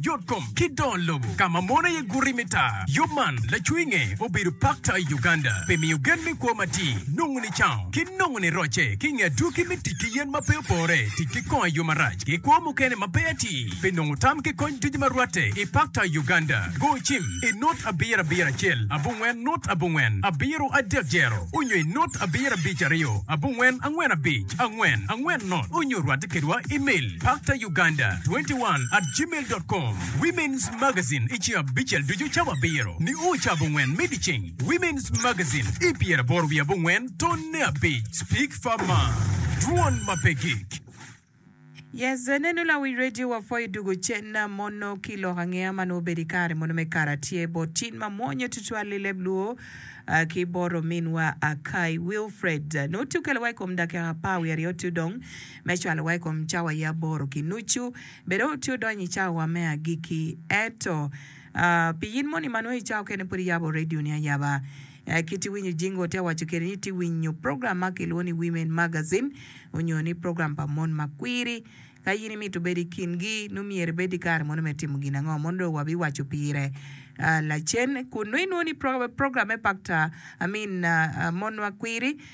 Yotkom ki dongo lobo ka ma mon aye guti me taa. Yub man lacwinge obedo pakta i Uganda pi miyo gen me kwo matir, nongo nicaung, ki nongo nirocce ki i nge adwogi me tic ki yen ma pe opore, tic ki kongo i yo marac, ki kwo mukene ma pe atir. Pi nongo tam ki kony ducu ma rwatte i pakta i Uganda, go cim i nut abiro abiro acel abongwen nut abongwen abiro adek jero onyo i nut abiro abic aryo abongwen angwen abic angwen angwen nut onyo rwatte kedwa i mel. Pakta. Uganda 21 at gmail dot com Women's Magazine I ci abicel ducu cawa abiro nio ca abongwen me dyeceng Women's Magazine I pyeraboro wiye abongwen tonne abic Speak for Ma Dwon ma pe gik. Yes, nenu lawic radio wa pho idugo cen na mono ki lok angeya ma nongo obedo ikare mono me kara tye bot cin ma mwonyo tutwal i leb luo ah, ki bot ominwa Akai Wilfred. Nongo ti okelo wa ikom dakika apar wiye aryo tudong me cwalowa i kom cawa ya aboro ki nucu. Bed aye wutye wudonyo i cawawa me agikki. Ento, piyin moni ma nongo icawa kene pud iyabo radioni ayaba? Kit iwinyo jingo ote waco kede ni itye ka winyo program ma kilwongo ni Women Magazine onyo ni program pa mon ma kwiri. Ka in imito bedo i kingi, nongo myero ibed ki kare mono me timo gin ango? Mono dong wabiwaco pire lacen. Kun nongo inwoyo ni program me Paktor, I mean, Mon ma Kwiri,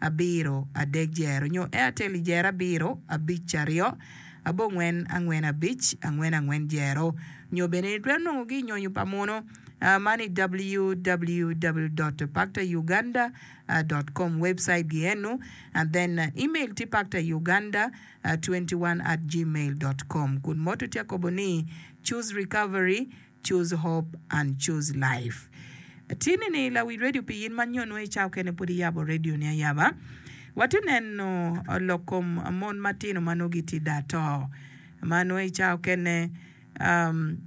abiro, adek jero, nyo Airtel i jero abiro, abic aryo, abongwen, angwen abic, angwen angwen jero, nyo bene itwero nongo gi i nyonyo pa muno man i www dot pakta Uganda dot com webcite gi enu and then email tye pakta Uganda twenty one at gmail dot com kun moto tye akobo ni choose recovery Choose Hope and Choose Life. Atir nini la wi radio pi in man nyo nongo icawo kene pud iyabo radio ni ayaba. Wati neno lok kom mon matino ma nongo giti da to ma nongo icawo kene um,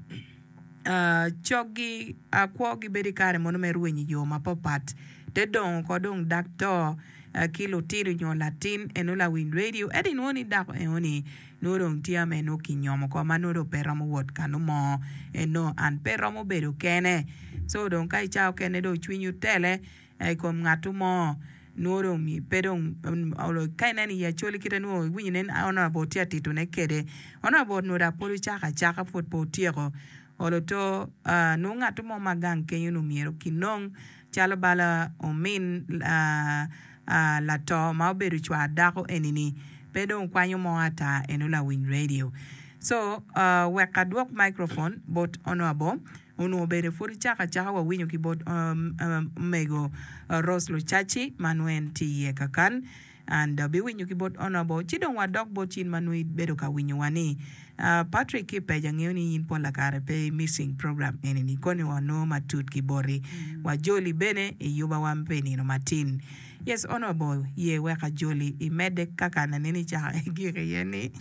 uh, cog gi uh, kwo gi bedo ikare mono me rweny iyo ma papat te dongo ko dong dak to uh, ki lutino nyo latin eno la wi radio edi nongo ni dako eoni Nongo dong tye ame nongo kinyomo oko ma nongo dong pe romo wot kano mo. En nongo an pe romo bedo kene. Co dong ka ica okene dong cwinyi otele i kom ngatu mo, nongo dong mi pe dong ka ineno i Acholi kite nongo iwinyo nen honourable tye ka titone kede. Honourable onongo dok pwod ocako acaka pwod pe otyeko olo to. Nongo ngatu mo ma gang kenyo-nu myero kinong Calo bala omin lato ma obedo cwar dako eni-ni pe dong kwanyo mo ata eno lawiny radio. So wek adwok microphone bot Honourable onongo bene pud cako acaka wawinyo ki bot Omego Rose Lucaci ma nongo en tye iye kakan. An dong abiwinyo ki bot Honourable ci dong wadok bot cin ma nongo ibedo ka winyowa ni. Ah, Patrick ki Page angeyo ni in polla kare pe i missing program enini koni wa onongo matut ki boti. Wa Joli bene iyuba wa pi nino matin. Yes Honourable, ye weka Joli imedde kaka an aneni caka ki gik iye ni.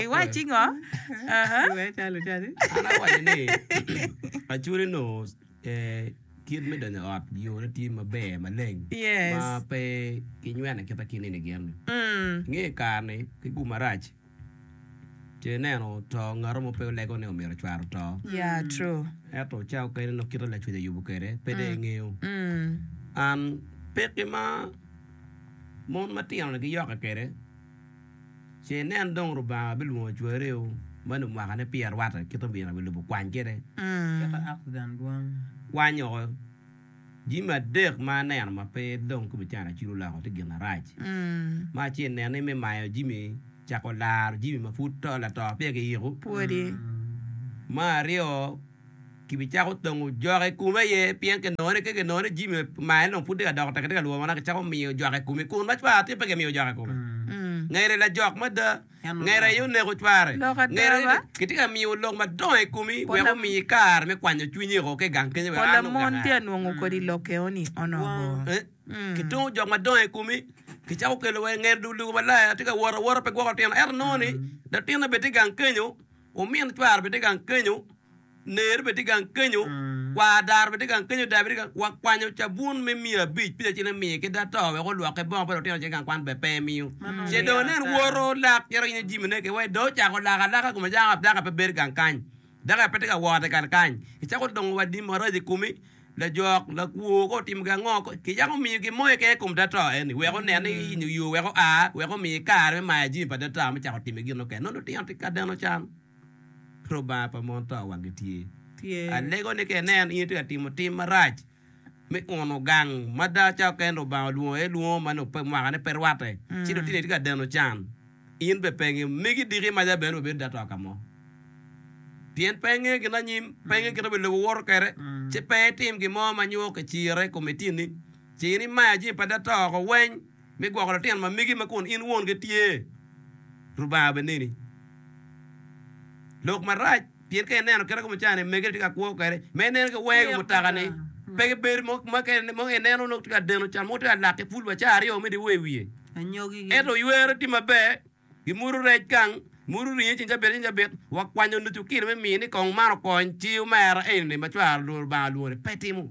Iwaci ngo? Aha. An awaco ni Acholi nongo Kit me donyo i ot yone tye maber maleng ma pe kinyweno aketa ki nino gin. I nge kare-ni ki gum marac ce ineno to ngat mo pe olego ni omyero cware oto. Ento ca okene nongo kite lacwec ayubo kwede pe dong ingeyo. Pekki ma mon matino-ni giyokke kwede. Ce inen dong Lubanga bilwongo cwariu ma lumwakane pi arwata kit omyero abilubo kwany kede. Kwanyo jimi adek ma aneno ma pe dong ki bicano acwilo oloko tye gin arac. Me acel nen ni me mayo jimi cako laro jimi ma pud to lato peya kiyiko. Me aryo. Kibicako tongo jok i kome aye pien kinongo ni ka kinongo ni Jimmy omaye dong pud tye ka dok otek tye ka lwongona, kicako miyo jok i kome. Kun ma cware atir pe kimiyo jok i kome. Ngeri lajok mada. Ngeri aye oneko cware. Lok ada Ngeri ba? kitye ka miyo lok madongo i komi Pol wek lam- omiyi kare me kwanyo cwinyi o ki i gang kenyo wek Pol an lamon oganga. tye ka nongo kodi lok eoni onongo. Eh, Mm. Kitongo jok madongo i komi, kicako kelo wa i ngeri dul dul malaya, atye ka wot awota pe gwoko lutino. Ento nongo ni latinna bene tye i gang kenyo, Omin cware bene tye gang kenyo, ner bene tye gang kenyo, kwar daro bene tye gang kenyo, dayo bene tye gang. Wakwanyo cabun me miya abic pica cen amiye ki da to wek olwokke bongo pa lutino ce gang kwan bene pe emiyo. Ce dong anen woto lak cito yenyo jimine ki wai dong ocako lak alaka kome dako ape bedo gang kany. Dako ape tye ka wot i gang kany. Icako dongo wa di maraco i komi. Lajok, lakwo, ka otimo gi ango, kicako omiyo gin mo keken i kom data eni wek onen ni inyo yo wek oa, wek omiye kare me mayo jami pa data me cako timo gin mukene. Nongo lutino tye ka deno can. Rubanga pa mon to wange tye. Alego ni ka ineno in itye ka timo tim marac me uno gang ma data oken Rubanga olwongo aye lwongo ma nongo mwaka ne pe rwate, ci lutini tye ka deno can, in bene penge megi diki maca bene obedo data ka mo. pien pe engeyo gin anyim, pe engeyo kit ma obed lobo woto kwede, ci pe etim gin mo ma nyo kicire i kom itini. Ce in imayo jami pa data woko weng me gwoko lutino ma megi ma kun in won gi tye. Rubanga bene neni lok marac, pien ka ineno kit ma kome ca ni, mege tye ka kwo kwede, ma ineno ki wenge mutoka ni pe gibedo mo ma ka ineno nongo tye ka deno can mogo tye ka lak ki pul wa ca aryo me dye wer i wiye, ento ywere tye maber. Gimuto rec gang, muto ringe ceng cabit acel cabit, wa kwanyo nucu kilo me miyo ni kong man okony ci omera eni lim ma cware olworo Lubanga olwore. Pe timo.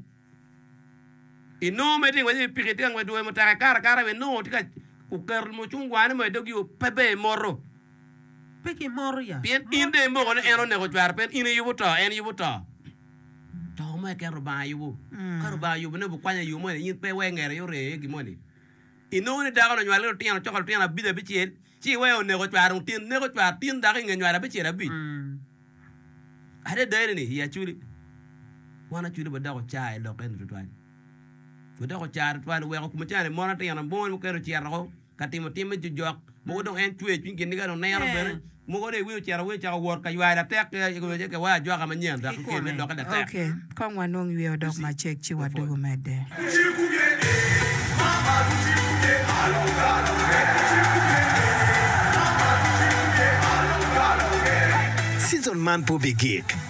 I nongo mere tye ka ngwec i wi piki, tye ka ngwec dwoyo mutoka ekato akata bene nongo tye ka oketo mucungwane mo i dog yo pe ber imoto. Pe kimoto ya. Pien in dong imoko ni en oneko cware pien in iyubo to, en yubo to. To mo keken Lubanga yubo. Ka Lubanga yubone obukwanyo i yo moni in pe iwe ngera aye oree iye gin moni. Inongo ni dako-ni onywalo lutino coka lutino abic abicel, ci iweo oneko cware dong tin neko cware tin dako i nge nywalo abicel abic. Adada eni-ni, i Aculi, wan Aculi wa doko car i lok eni tutwal. Wadoko car tutwal, weko kumicaner mono tino mono mukene ocito woko ka timo tim me jojok. Mogo dong en cweyo cwiny gin niga dong neno bene mogo dong iwinyo ocito awinyo ocako wot ka ywai latek ki aywec ki wai ajwaka manyen dok ki kene doki latek. Ok, kong wanong yweyo odok macek ci wadugu medde. Season man pe obigik.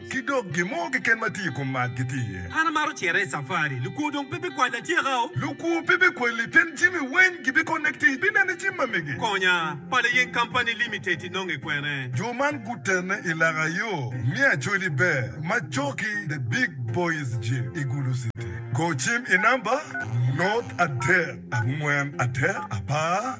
Ki dok gin mo keken ma tye i kom mat gitye iye. An amaro cere i safari. Lukwo dong pe bikwal atyekao. Lukwo pe bikwal liten jami weng. Gibikone ki tic. Binene cim ma mege. Konya, Pala Yeng Kampani Limited inonge kwene? Jo man gutene i laka yo me Acholi Ber ma coki The Big Boys Gym i Gulu City. Go cim i namba nurt adek angwen adek apar.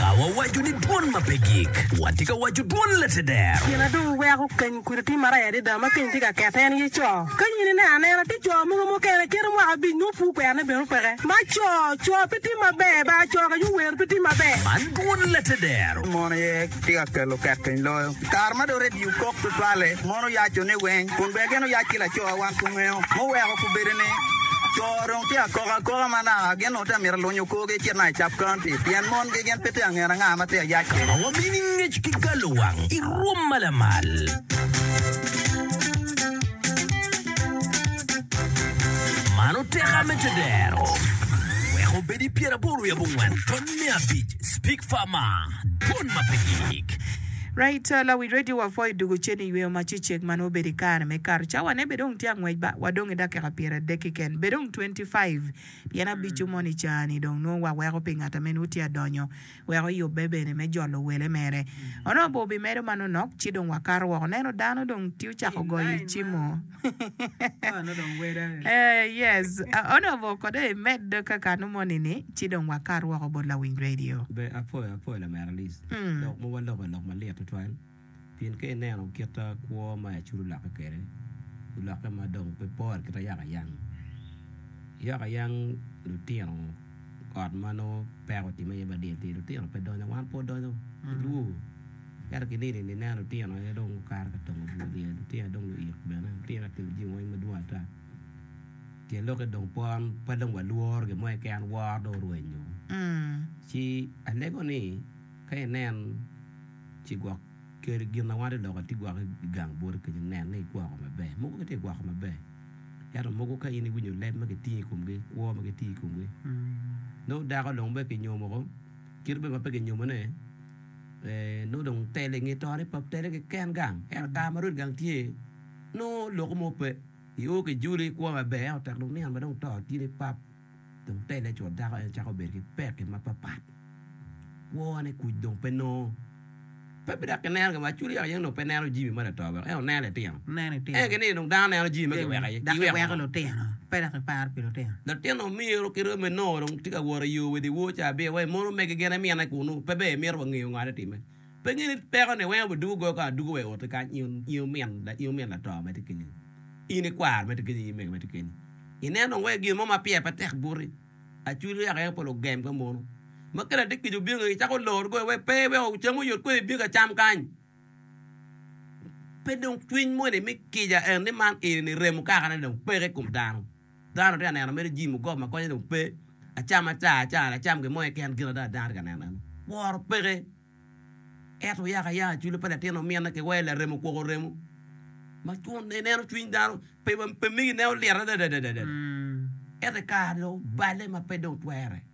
Ka wawaco ni dwon ma pe gik, watye ka waco dwon lateder. Gin adungo weko keny kudi tye marac adada ma keny tye ka kete en aye co. Ka in ineno anena tye co mogo mukene kito mwaka abic nyo pur kwerone bene opeke ma co co pe tye maber ba co ka nyo wer pe tye maber. Man dwon lateder. Mon aye tye ka kelo ket keny loyo. I kare ma dong redio kok tutwalle, mon oyaco ni weng kun ber gin oyac ki laco. Wan kungeyo muweko kubedo ni co dong tye ka koko akoka ma naka gin. Ota myero aluny okorgi ecit ma i Sub County pien mongi gin pe tye angen anga ma tye ayac. Ka wabino i ngec ki galo wang i rwom ma lamal. Mano tek a me tedero. Wek obed i pyer aboro i abongwen tony me abic Speak Farmer Dwon ma pe gik. Right, lawic radio wa Foy Dugu Ceni iyweyo ma ci ceg man wabedo ikare me kato cawa ne be dong tye angwec ba wadong idakika pyeradek keken be dong twenty five. Pien abico mono i caa-ni dong nongo waweko pi ngat a mene uti adonyo, wek oyubbe bene me jolo wele mere. Onongo bor bimedo manonok, ci dong wakato woko, neno dano dong ti ocako goyo i cimo. Yes, onongo bor kode i med kakanu moni-ni, ci dong wakat woko bot lawiny redio. Be apwoyo apwoyo lamera Liz, dok mowa loko lok malit tutwal. Pien ka ineno kit kwo ma Yacudu olokke kwede, olokke ma dong pe pore kit ayakayang. Yakayang lutino ot ma nongo peko otimme iye badit atir, lutino pe donyo, wan pud wadonyo ki dwogo. Ento ki nino-ni ineno lutino aye dong gukato ka tongo bur wiye, lutino aye dong luik bene, lutino aye gitimo jami weng madwong ata. Tyen lokke dong pon pe dong walworo gin mo keken, woro dong orwenyo. Ci alego ni. Ka inen, ci gwok keri gin ma wante dok ati gwoko i gang boti kenyo. Nen ni igwoko maber. Mogo kitye ka gwoko maber, ento mogo ka in iwinyo leb ma kitingo i komgi, kwo ma kitingo i komgi, nongo dako dong bene kinyomo ko. Kit bene ma pe kinyomone, nongo dong telo i nge tone pa telo keken gang. Ento kare ma rwed gang tye, nongo loko mo pe. Io kijuli, ikwo maber, ento tek dong niang ma dong to tye ni pap. dong telle cwod dako en cako bedo ki pekki mapapat. Kwone kuc dong pe nongo. Pe bidok ki neno gin ma Aculi yaka yene onongo pe neno Jimmy ma lato weko en oneno litino. En gin ni dong dano neno Jimmy ma kiweko aye. Dok kiweko lutino, pe dok kiparo pi lutino. Latin omiro ki rwom enongo dong tye ka wot iyo wede woo ca abiro wa i mon omege gin emine kunu. Pe ber imito wa ngeyo ngo aye time. Penye ni, Peko ni weng obidugo goyo kong aduga wa i otti kany, in omin lato ma tye kenyi, in ikwaro ma tye kenyi, in mego ma tye kenyi? Ineno dong wai gin mo ma piye pe tek buti? Acwiny oyako aye pol ogem ka mono. Ma kele atir kica obino ngegi, cako loro goyo wai pe wek ocam oyot kwede i bika cam kany. Pe dong cwiny moni me kica en ni man eni ni remo kakane dong peke i kom dano. Dano atye ka neno mere Jim ogob ma konye dong pe, acama ca acana lacam gin mo keken gin ada dano atye ka neno eno. Woro peke. Ento yaka yaka cwilo pa latin omine ki wai larem okwoko remo ma cun ineno cwiny dano pe pe migi nen olyet adada ento i kare ni dong obale ma pe dong twere.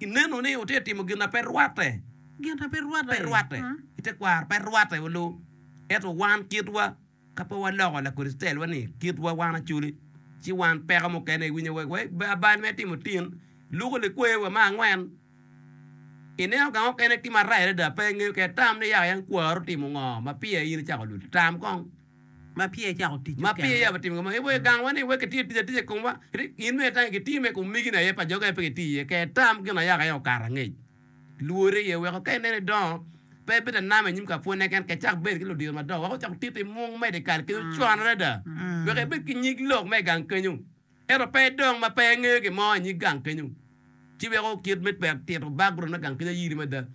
Ineno ni wutye ka timo gin na pe rwatte. Gin na pe rwatte i tekwaro pe rwatte wa luu. Ento wan kitwa, ka pe waloko Lakricitaelwa ni kitwa wan acoli, ci wan peko mukene iwinyo wek wa bal me timo tin luko likwewa me angwen. Ineno ka mukene ki marayi adada pe ingeyo kede tam ni yaka yan kwaro timo ngo ma pire in icako lul. Tam kong. ma peya icako tic mukene. Ma peya watimo kama, iboyo gangwa ni wek kitiyo tic atica i komwa, kadi gin me atangi kitiyo me komigine aye, pa joge aye pe kitiyo iye. Ker tam gin ayaka aye okato angec. Lwore aye weko ka ineno idongo, pe ibedo anama i nyim kapwonne keken, ka icak bedo ki ludiro madongo wek ocako titi i mung medo i kal kenyo, cwan adada wek ibed ki nyig lok me i gang kenyo. Ento pe idong ma pe ingeyo gin mo i nyig gang kenyo, ci weko kit me twero tito background me gang kenyo ayiri mada.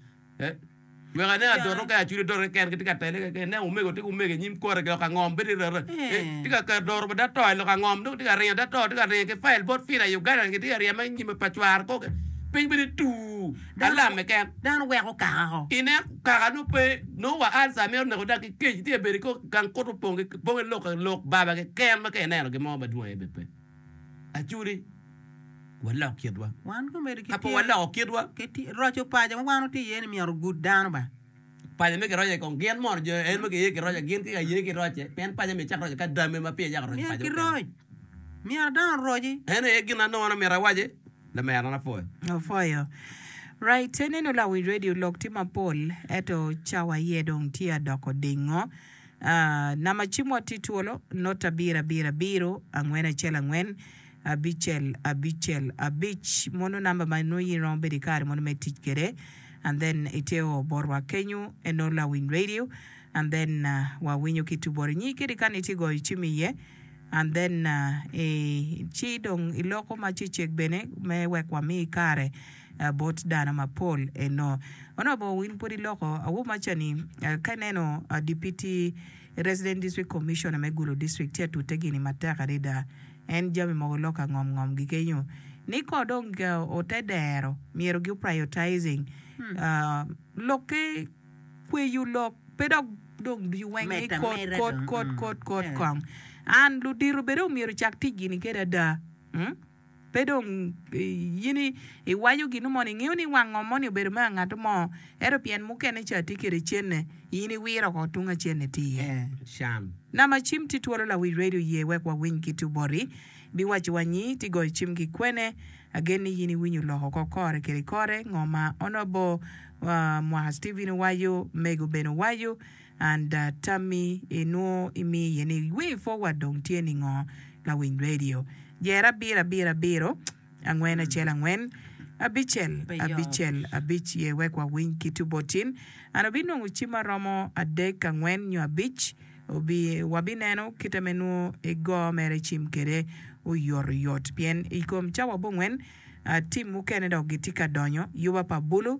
Wek ane adoto ka acudo doto keken gitye ka tele keken, ineno omego tye ki omego i nyim kore lok angom pe tye rara, tye ka keto doro pa dato i lok angom dong tye ka ringo dato tye ka ringo ki file bot fila i Uganda gitye ka ryeme i nyime pa cware koko piny bene tuu. alam keken. Dano weko kaka ko. I nen kaka nongo pe, nongo wa ulcer mito neko dok ki kec tye bedo kong gang kuto opong ki pong ki lok lok baba keken ma ka ineno gin mo madwong aye bene pe. Acudi walok kitwa. Wan komedo ki tyen. Kapo waloko kitwa. Roco paco ma wan watye iye ni myero ogud dano ba. Paco me kiroce kong gin mono jo en ma giye ki roca gin ki aye ki roce pien paco myero ecak roce ka dame ma pire cako roco paco mukene. Myero ki roc. Myero dano oroci. En aye gin anongo an omyero awaci lamerana apwoyo. Apwoyo. Right ineno lawi radio lok tye mapol eto cawa aye dong tye adoko dingo ah nama cimwa tye twolo not abiro abiro abiro angwen acel angwen. Abicel abicel abic mono number ma nongo in iromo bedo ki kare mono me tic kwede and then ite o botwa kenyo eno lawiny radio and then wa winyo ki tuboro nyi kadi kani ite goyo cim iye and then i ci dong iloko ma cecek bene me wek wa mi kare bot dano ma pol eno. Onongo bor in pwod iloko awobi ma ca ni ka ineno deputy resident district commissioner me gulu district ci atute gini matek adada. En jami mogo lok angom ngom gi kenyo ni ko dong ote dero myero gi priotising lok ki kweyo lok pe dok dong dwi weng ni kot kot kot kot kot kong and ludito bene omyero cak tic gini kede ada pe dong in iwaco ginu moni ingeyo ni wang ngo moni obedo me angato mo. Ento pien mukene ca tye kede cene, in iwiro ko tung acen itir. Nama cim tye twolo lawic radio ye wek wawiny kit oboti biwaco wa nyi tye goyo cim ki kwene. Agen ni yin iwinyo lok oko kore kede kore ngo ma Honourable Mwaka Steven owaco, Mego bene owaco, and tammi inwo imiyo iye ni wing forward dong tye ni ngo lawic radio. Jer abiro abiro abiro. Angwen acel angwen, abicel abicel abic ye wek wawiny kit obotin. An abinongo cim ma romo adek angwen nyo abic, obi wabineno kite me nwo i go mere cim kede oyot oyot pien ikom cawa bongwen tim mukene dok gitye ka donyo, yuba pa bulu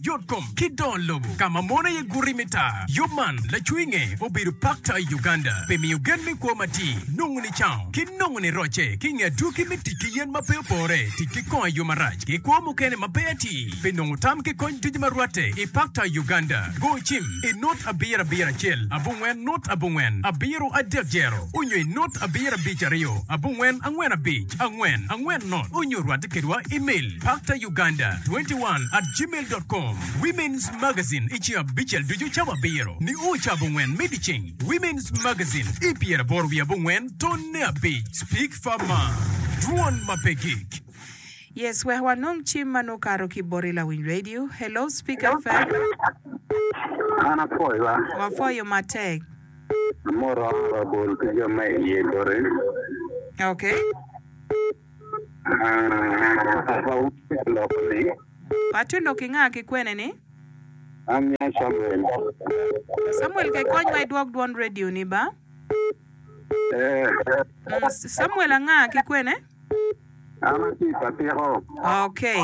Yotkom ki dongo lobo ka ma mon aye guti me taa. Yub man lacwinge obedo pakta i Uganda pi miyo gen me kwo matir, nongo nicango, ki nongo nirocce ki nge adwogi me tic ki yen ma pe opore, tic ki kongo i yo marac, ki kwo mukene ma pe atir. Pi nongo tam ki kony ducu ma rwatte i pakta i Uganda, go cim i nut abiro abiro acel abongwen nut abongwen abiro adek jero onyo i nut abiro abic aryo abongwen angwen abic angwen angwen nut onyo rwatte kedwa i mel. Pakta. Uganda 21 at gmail dot com Women's Magazine I ci abicel ducu cabo abiro nio ca abongwen me dyeceng Women's Magazine I pyeraboro wiye abongwen tonne abic Speak for Ma Dwon ma pe gik. Yes wek wanong cim ma nongo kato ki boti lawiny radio. Hello speak FM. An apwoyo wa. Wapwoyo matek. Amoro rabol ki jo ma iye boti. Okay. Paco lok ki nga ki kwene ni? An nya Samuel. Samuel ke konywa idwok dwon radio ni ba. Eeh. Samuel anga ki kwene? An atye i Patiko. Okay.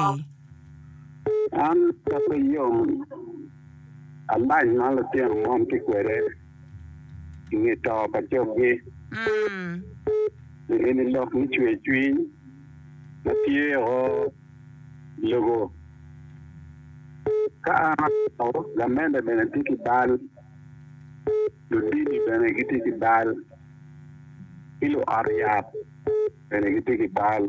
An pe ayom alac ma litino mon tye kwede. i nge to pa coggi. Pi eni lok me cwercwiny ma tye o i lobo. Ka an ato, lamenda bene tye ki bal, ludini bene gitye ki bal, ki luot yat bene gitye ki bal.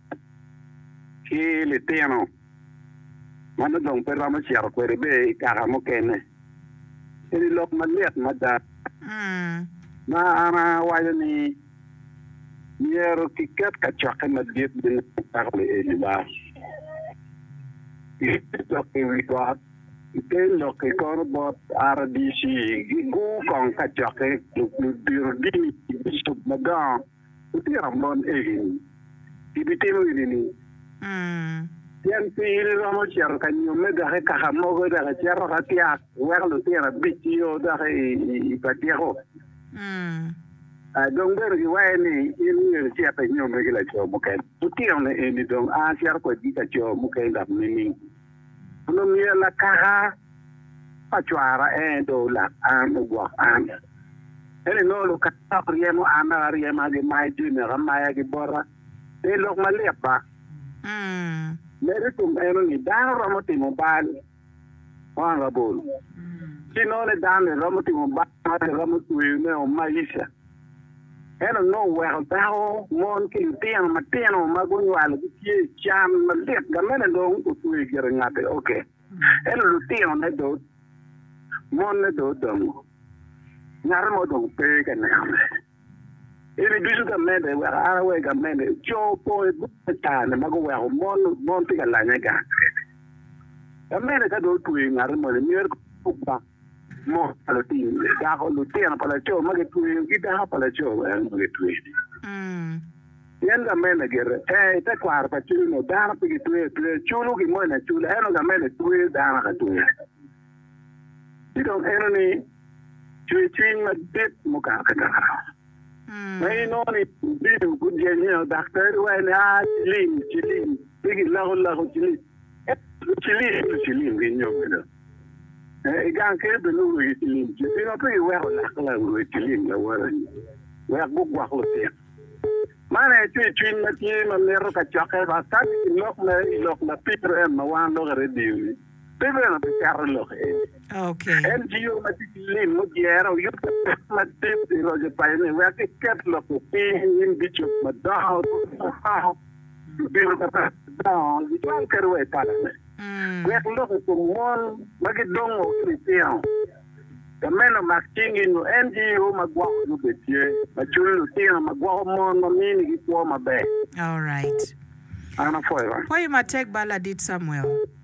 ki litino ma nongo dong pe romo cito kwede bene i kaka mukene. Eni lok malit mada ma an awaco ni myero kiket kacokke madit me neno cako lieli ba i te lok i wi got. I te lok-ki kono bot RDC gigur kong kacokke, ludito dini ki bicop madongo. Lutino mon egini gibitimo enini, Pien pi in iromo cito ka nyomme dok i kaka mogo dok icito ka tyak, iweko lutino abic ki yo dok i pa tyeko. Dong bene giwaye ni, In myero icit inyomme ki laco mukene. Lutino-ni eni dong a cito kwedgi ka co mukene dok nining? Onongo myero lakaka pa cwara en dong olak an, ogwok an. Ento inongo lukatta ok ryemo an dok aryema, gimayo jami wek amayagi bota. Eni lok malit ba! Medo i kom meno ni dano romo timo bal kwano labolo, ci inongo ni dano-ni romo timo bal ma romo tweyone o maisha. En onongo oweko dako, mon ki litino matino ma gunywalo gitye i can malit. Gamene dong otweyo i gire ngate oke. Ento lutinone do, monne do odongo. Ngate mo dong pe ka nenone. Eni ducu gamede, wek an awe gamede, co opong i boma i kare-ni ma guweko mon, mon tye ka lanye gang keken. Gamede ka dong otweyo ngate moni, myero kong okwak. Mot pa latin dako, lutino pa laco ma gitweyo ki dako pa laco bene ma gitweyo-ni. Pien gamene gire ee i tekwaro pa cwiny nyo dano pe gitweyo atweya, culo gimoni acula, ento gamene tweyo dano ka tweya. Ci dong enoni cwercwiny madit mukato kakare, ma inongo ni Lubino gujenyo daktari wa ni, aa ciling ciling, pe gilako lako ciling. Ento cilim pi cilim ki nyodo. I gang kene bene nongo wegi cilim tye. Pingo pe giweko lak lawe cilim lawote-ni wek gugwok lutit? Man aye tye cwiny ma tye ma mito ka cokke ba kadi i lok me i lok lapito en ma wan lok i radio-ni pe bene biketo lok eni. En jiro ma tye ki lim mujere oyub ki pek madit i roco paco ni wek giket lok-ki piny i nyim bicop madongo. Lutino Papat gudongo gicwal kadi wa i palame wek lok i kom mon ma gidongo ki litino. Ka meno mak cingi nyo en tye yo ma gwoko nyo bed tye ma cul lutino ma gwoko mon ma minigi kwo maber. Alright. An apwoyo. Pwoyi matek bal ladit Samuel.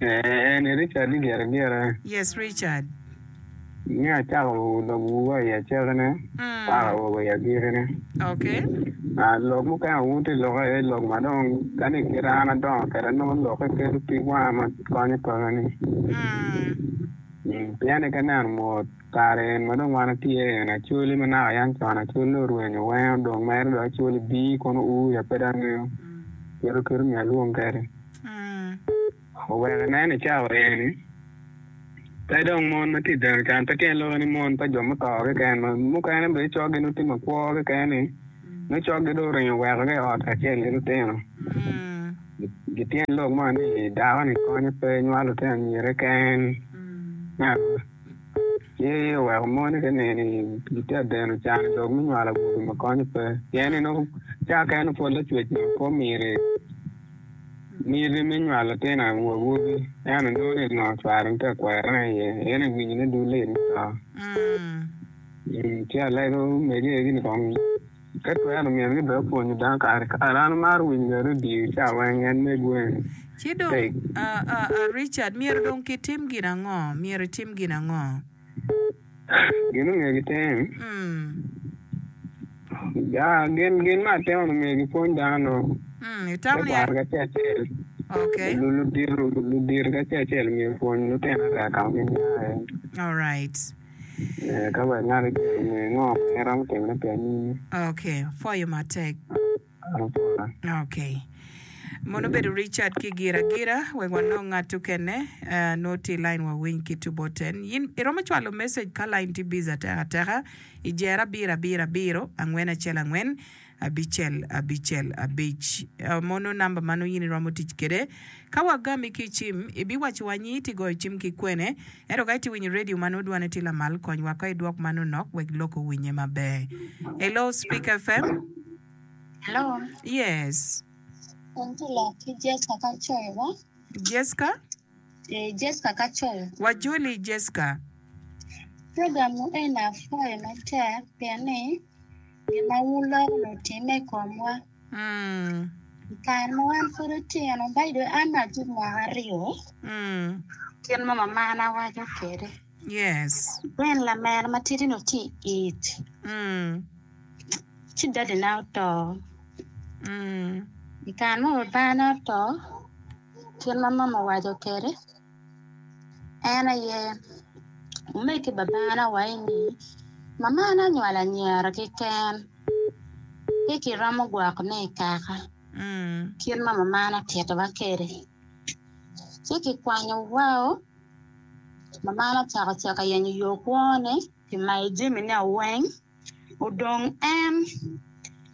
En ni Richard ni gire gire. Yes Richard. Ni acako lobo wa i acake ne mpaka wa wa i agiki ne. Okay. Ah lok mukene awoto ki loke aye lok ma dong ka ni kite an adongo kede nongo loke kelo pig wanga ma konyo paka ni. Pien ni ka neno mot kare en ma dong wan watye aye en acoli ma naka yan con acoli dong orwenyo wenge odong mere dong acoli bii kono ur ya pe dong angeyo. Kit oketo myel wong kede. Oweko inen i cawa eni, pe dong mon ma tye i deno can pe tyen loko ni mon pa jo muto keken ma mukene bene coggi nongo tye makwo keken ni nongo coggi dong oringo oweko ki i ot kacel ki lutino. Gityen lok mo ni dako ni konye pe nywalo lutino anyirre keken me aruka ci oweko moni ki nino gitye ka deno can dong me nywalo awobe ma konye pe pien ni nongo cawa keken pud lacwec nongo pe omiri Myero me nywalo latin awobi ento nongo ni nongo cware nongo tye ka kwero ne aye en aye winyo ne dule i mutoka ci alego omege aye gin kong ka twero myero gin bene opwonyo dano kare kare an amaro winyo bene radio ca weng en mego eni Ci dong Richard myero dong kitim gin ango myero itim gin ango? Gin ma omyero gitim, gin ma atemo ni omyero gipwony dano me kwaro ki acel acel, ludito ki acel acel omyero opwony lutino aryo ka ma giniaye, eka ngat acel onge ngo ma en romo timone pi anyim. Lubanga. Okay. Mono obedo Richard ki gira gira wek wanong ngat okene eh, noo tye i line wa winy ki tubo ten. Yin iromo cwalo message ka line tye busy ateka ateka i jer abiro abiro abiro angwen acel angwen abicel abicel abic. Eh, mono number ma nongo yin iromo tic kede Ka wagami ki i cim, ibiwacciwa ni iti goyo cim ki kwene. Ento ka iti winyo redio ma nongo dwane tye lamal, kony wako i dwok man onok wek lok owinnye maber. Hello speak FM. Hello. Yes. An ti lok ki Jesca Kacoyo wa. Jesca? Ee, Jesca Kacoyo. Wajoli Jesca. Program nu eni apwoyo matek pien ni gin ma wuloko ni wutimme i komwa. I kare ma wan pud otino ba dong an atye mwaka aryo kit ma mamana waco kwede ben lamene matidi ni tye i ic ci dadina oto i kare ma babana oto kit ma mama owaco kwede. En aye, wumed ki Babana wa i ni, Mamana onywalo anyira keken, pe kiromo gwoko ne i kaka kit ma Mamana otitowa kwede. Ci kikwanyo wao, Mamana ocako cako yenyo yo kwone pi mayo jamine weng. Odong en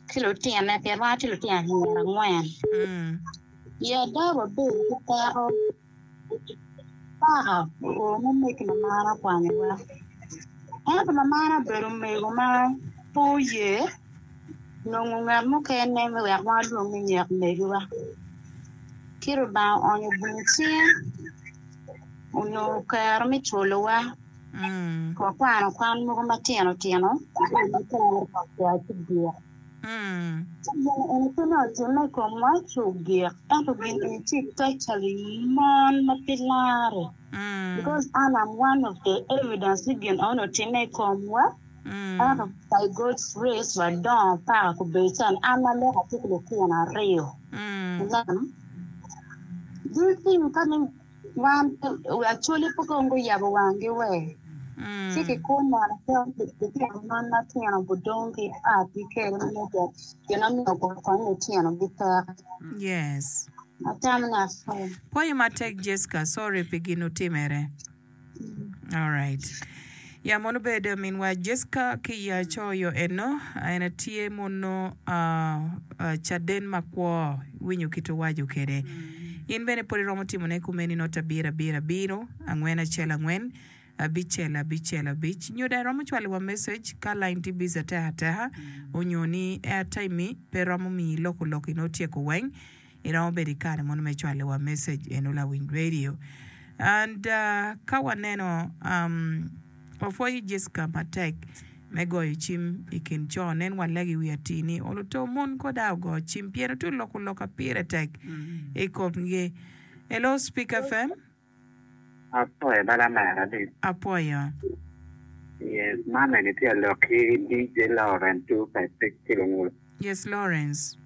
ki lutine pien wan watye lutino anyira angwen. Yadda wa bedo ki peko paka oone me ki mamana okwanyowa ento mamana obedo omego ma pe oye nongo ngat mukene me wek wa lwong ni nyek megiwa ci Lubanga oonyo bwungo cinge onongo kero me cwalowa. Wakwano kwan mogo matino tino me kare pa kwai cugik. Ci gin eni pe nongo otimme i komwa cugik, ento gin eni ci totally mon ma pe lare, because an am one of the evidence ni gin eno otimme i komwa, ento by God's grace wadongo paka kubedo cani an ma lok atye ki litino aryo, ineno. This thing ka dong Wan Acholi pud dong guyabo wanggi wer, ci kikun neno cal pi litino man ma tino gudong ki atgi kede ma nongo jo gin omiyo guro kony litinogi pek. Yes. Atamo ngat pwonyo. Pwoyo matek Jesca, sorry pi gin otimere. Alright. Ya mono bed minwa Jessica ki i Acoyo eno, en atye mono ah, ah, caden makwo, winyo kit owaco kede. In bene pwod iromo timone kumeni not abiro abiro abiro, angwen acel angwen, abicel abicel abic. Nyo dong iromo cwaliwa message ka line tye busy ateka ateka, onyo ni airtime-mi pe romo miyi lok olok-ki nongo otyeko weng, Iromo bedo i kare mono me cwalo wa message eno lawiny radio and ka waneno wapwoyo Jessica matek me goyo cim i kin co nen walego i wi atii ni olo too mon koda ogo cim pien otu loko loka pire tek i kom gi. Hello speaker FM. Apwoyo bala mer adit. Apwoyo. Yes mama eni tye alok ki DJ Lawrence two five six ki lungut. Yes Lawrence.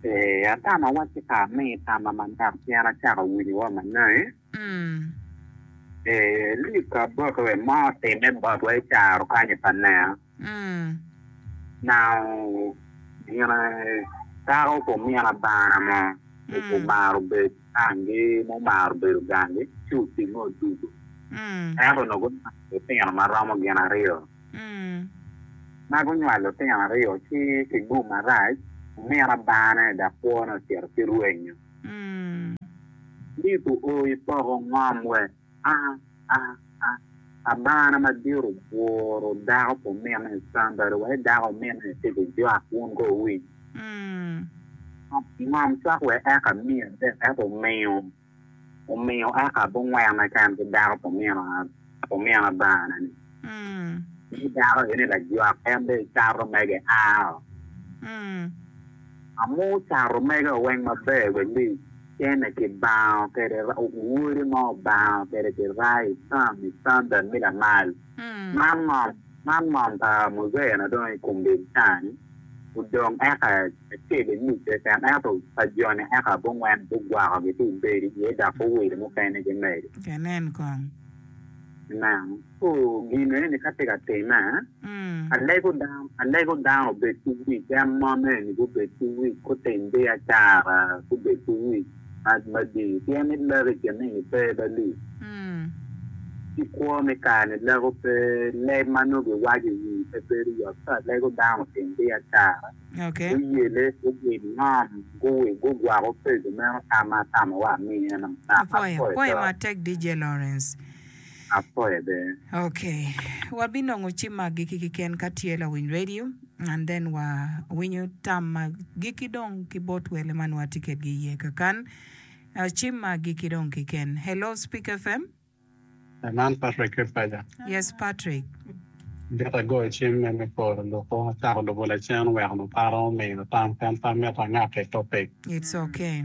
Eeh atama wa ci ka ami tama manok pien acako winyo wa manai. Mm. Eeh Luc Aboke wek mo otime botwa i caro kanyi pa nea. Mm. Nao gina dako kumina bana mo. Omaro bed. Gangi ma omaro bedo gangi ci otinge odugo, ento onongo gunywalo litino ma romo gin aryo. Ma gunywalo litino aryo ci pi gum marac omira bane dok kwone ocito ki rwenyo. Lip oo i poko ngom wek. A, a, a, Abana madit obworo dako pi omine. Somebody wek dako omine tye ki jwak wun ko owiny. Mm. Ngom cok wa eka amiyi adek eka omiyo omiyo eka abungwene kene ki dako pi omino pi omino Abana-ni. Mm. Ni dako eni lajwak en dong icato mege ao. Mm. Amu cato mege weng maber believe. Kene ki bango kede wodi mo bango kede ki rai tam i standard mi lamal. Man ngom man ngom pa muzee na dong i kum bil cani odong eka acel i nuc keken ento pa joni eka abongwen gugwako gi ci obedi iye dok guwilo mukene gimedo. Amen. Ento gin meno ni ka tye ka time, alego dano, alego dano obed ki wic, en mon eni gubed ki wic, gutim biacara, gubed ki wic madii, pien ni lek i kin nino pe ba lii, ci kwo me kare-ni leko pe, leb ma nongo giwaco i wii pe bedo yot. So alego dano otim biacara, guyele, gubin ngom, gugwako pego meno tam ma atamo wa amiye-nu. Apwoyo. Apoye bene. Ok. Wabinongo cimma agikki keken ka tye lawiny radio and then wa winyo tam ma agikki dong ki bot wele ma nwa tye kedgi iye kakan. Cimma agikki dong keken. Hello Speak FM. Man Patrick ki paja. Yes Patrick. Mito agoyo cim me me poro luku atako lubo lacen wek nuparo omiyo tam pien pe amito angak ki topic. It's okay.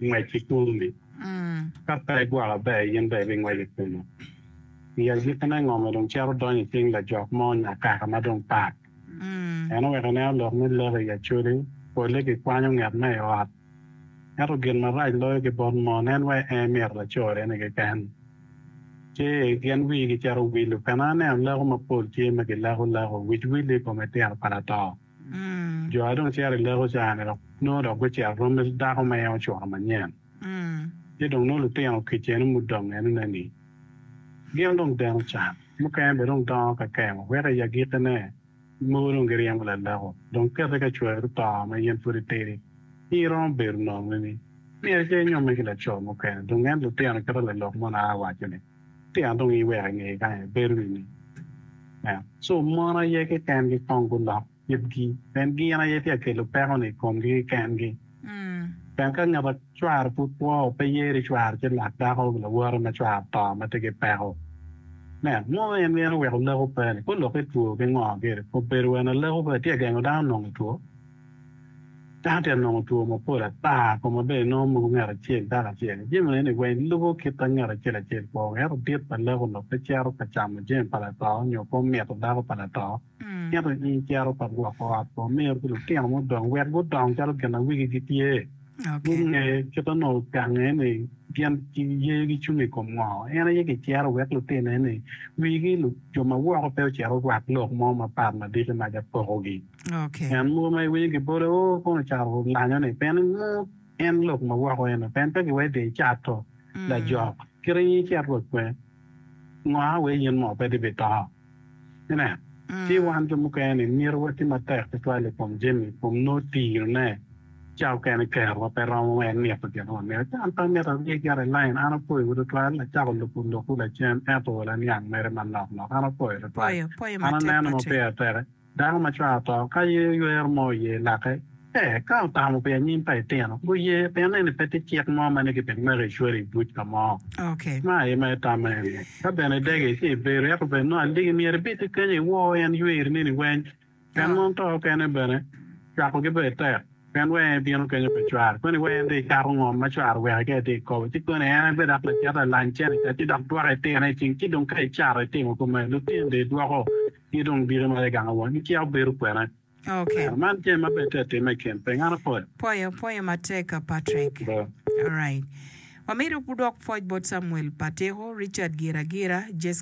Ngwec ki tumbi. Ka pe igwoko aber, in dong ibingwec i kume. I agikine, ngo ma dong cito donyo i cing lajok mo nyo akaka ma dong pat? En oweko inen olok ni lek i acoli pole gikwanyo nget ma i ot. Ento gin marac loyo ki bot mon en wai en mito lacorene keken. Ce, gin wigi cito wilo. Pena aneno leko mapol tye ma gileko leko, wic wille i kome tito pa lato. Jo aye dong cito i lek oca-ni dok nongo dok gucito romme ki dako ma en ocuto manyen. Ci dong nongo lutino kicene mudong enone ni gin dong deno can, mukene bene dong dongo ka kemo, weko i agikkine mogo dong giryemo laleko. Dong kette ka cweri oto ma in pud itidi, ci iromo bedo nongo ni myero icer inyomme ki laco mukene. Dong en lutino kite lalok mono a waco ni. Tika an dong iweko i ngeye kany ibedo nini? Nen, co mon aye kekengi kong gulok itgi, pien gin aye tye ka kelo peko-ni i komgi kekengi. Pien ka ngat a cware pud kwo, pe yero i cware ci lak dako lawote ma cware oto ma tye ki peko. Nen, mo en gin oweko leko pe-ni, pe olok itwo ki ngo gire, obedo wene leko pe tye ka gengo dano nongo itwo? Dano tye ka nongo two mapol ata, kun ma bene nongo moko ngat acel dako acel. Jami man eni weng lubo kit ma ngat acel acel kwo wek ento dit pa lek onongo pe cito ka camo jami pa lato nyo pe omito dako pa lato. Ento in icito ka gwoko ot pa omiro ki lutino ma odong wek gudong calo gin ma wigi gitye. Gunge kit ma nongo gange ni gin yeyo gicung i kom ngo. En aye kicero wek lutino eni wigi jo ma woko pe ocito orwak lok mo mapat ma diki mac apokogi. Ngat mogo ma iwinyo gibole oo kono ocako lanyone pien inongo en lok ma woko eno pien pe giwede icato lajok kit aye icet rwod kwe ngo a wee yen moo pe di bito inen ci wan jo mukene ni myero wati matek tutwal ikom jami ikom noo tiro ne ca okene kero wa pe romo wee nito gin ma wamito ci an pe amito arye gire i line an opoyo wa tutwal acako luku loku lacen ento laniang mere manok nok an opoyo tutwal an aneno ma peya teke. Dano ma cware oto ka yeyo ywero mo iye lake, ee, ka otamo pi anyim pa etino, guye, pien eni pe tye cik mo ma ni kibi meki icwere i buc ka mo. Ma aye ma itamme iye. Ka bene idege ci ibedo, ento bed nongo aligi, myero ibit ki kenyo iwo en yweri neni weny. Pien mon to okene bene, cwakogi ber tek, pien wee en ebino kenyo pa cware, koni wee en dong ikato ngom ma cware oweki ka itye ka kobo, ci koni en aye bed dok lacito, alany cene, kadi dok dwoko etino i cing, ci dong ka icato itimo kume, lutini dong idwoko ki dong dike ma aye gang awon giciko bedo kwena kwena. Man jami ma ber tek timme i kin piny. An apwoyo. Pwoyo pwoyo matek ka Patrick. Alright. Wamito wudwok pwoc bot Samuel Patiko, Richard Giragira, Jesca.